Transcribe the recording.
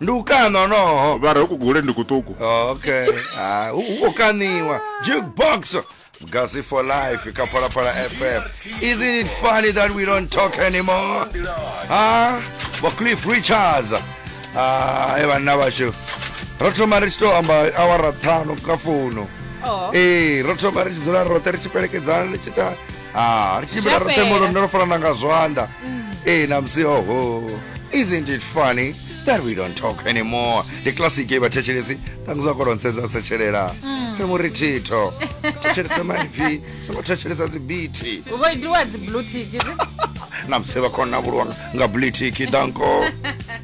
ndi u kaṋa honoho vha re hu kugule ndi kuṱuku Oh, okay ha hu hu khou kaṋiwa jukebox gazi for life kha phalaphala fm isn't it funny that we don't talk anymore ha vho cliff richards Ah, e vhanna vhashu ro thoma ri tshi tou amba awara ṱhanu kha founu Oh. ee ro thoma ri tshi dzula roṱhe ri tshi pelekedzana ri tshi ita ah ri tshimbila ro Zwa tembo fhela. lune ro farana nga zwanḓa ee na musi oho isn't it funny that we don't talk anymore ndi classic ye vhathetshelesi ṱanguzwa kolo nsedza setshelela fe muri thitho thetshelese maipfi songo thetshelesa dzibiti vho itiwa dzi blue tick na musi vha khona vhulwa nga blitiki danko